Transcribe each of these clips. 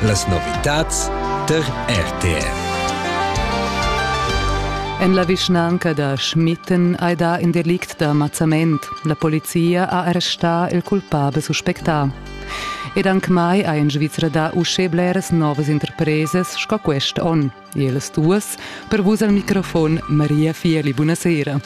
Las novitads tar RTR. En la vischnanca da Schmitten hai dà in delict da mazzament. La polizia ha arrestà il culpabel suspectà. Ed anc mai ha in Svizra dà uschè bleras novas interpresas sco quest onn. Ellas duas per vus al microfon Maria Fieli. Buonasera.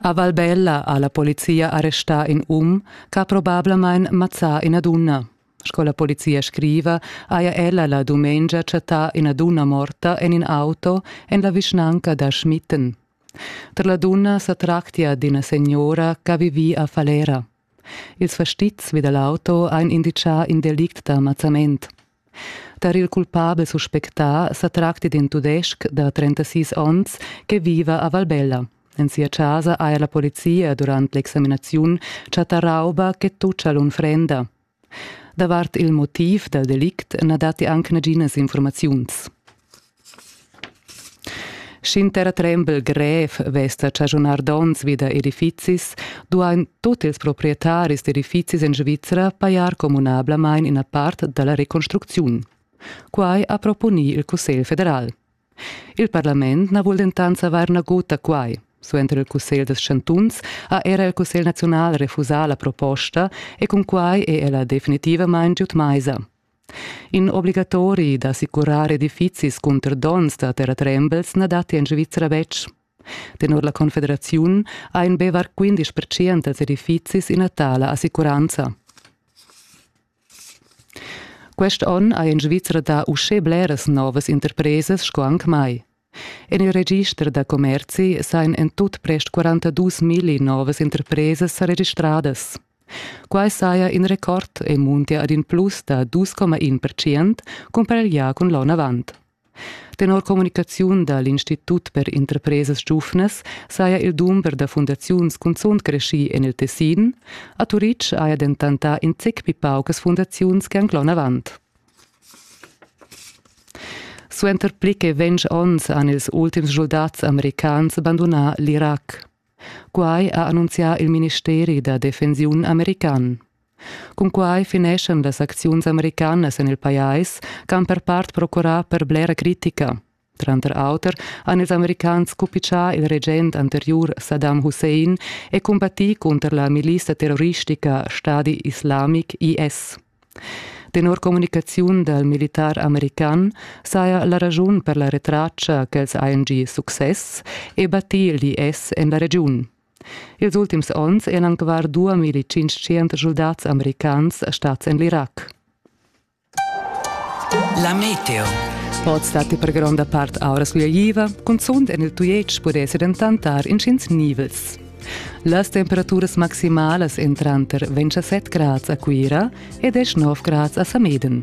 A Valbella ha la polizia arrestà in um che ha probablamain mazzà ina dunna. Sco la polizia scriva, haja ella la dumengia chattà ina dunna morta en in auto en la vischnanca da Schmitten. Per la dunna sa tractia d'ina signora ch'ha vivì a Falera. Ils fastizs vi da l'auto han inditgà in delict da ammazzament. Tar il culpabel suspectà sa tracti d'in tudestg da 36 onns che viva a Valbella. En sia casa ha la polizia durant l'examinaziun chattà rauba che tuccia l'unfrenda. Davart il motiv dal delict na datti anc naginas infurmaziuns. Sch'inter trembel grev vess da chaschunar donns vi da edifizis, duain tut ils proprietaris d'edifizis en Svizra pajar communablamain ina part da la reconstrucziun. Quai ha proponì il Cussegl federal. Il parlament na vul dentant savair nagut da quai. Suenter il cussegl dels chantuns ha era il cussegl naziunal refusà la proposta e cun quai è ella definitivamain giud maisa. In obligatori d'assicurar edifizis cunter donns da terratrembels na datti en Svizzera betg. Tenor la Confederaziun ha in Bevar 15% dels edifizis ina tala assicuranza. Quest onn ha en Svizra dà uschè bleras novas interpresas sco anc mai. En il register da commerzi sajan en tut prest 42 milli novas interpresas sa registradas. Quai saja in record e muntia ad in plus da 2,1 percent cumpareglià cun l'onn avant. Tenor communicaziun da l'Institut per interpresas giuvnas saja il dumber da fundaziuns cunzunt creschì en il Tessin. A Turitg haja dentant dà in zic pli paucas fundaziuns che anc l'onn avant. Suenter pli che ventg onns han ils ultims schuldats americans bandunà l'Irac. Quai ha annunzià il ministeri da defensiun american. Cunquai fineschan las acziuns americanas en il pajais ch'han per part procurà per blera critica. Tranter auter han ils americans cupitschà il regent anteriur Saddam Hussein e combattì cunter la milissa terroristica Stadi Islamic IS. Tenor communicaziun dal militar american saja la raschun per la retraccia ch'els hajan gì success e battì l'IS en la regiun. Ils ultims onns eran anc var 2500 schuldats americans stads en l'Irac. La meteo. Oz datti per gronda part aura sgugliaiva, cunzunt en il Tujetsch pudessi dentant dar intgins nivels. Las temperaturas maximalas èn tranter 27 grads a Cuira e 19 grads a Sameden.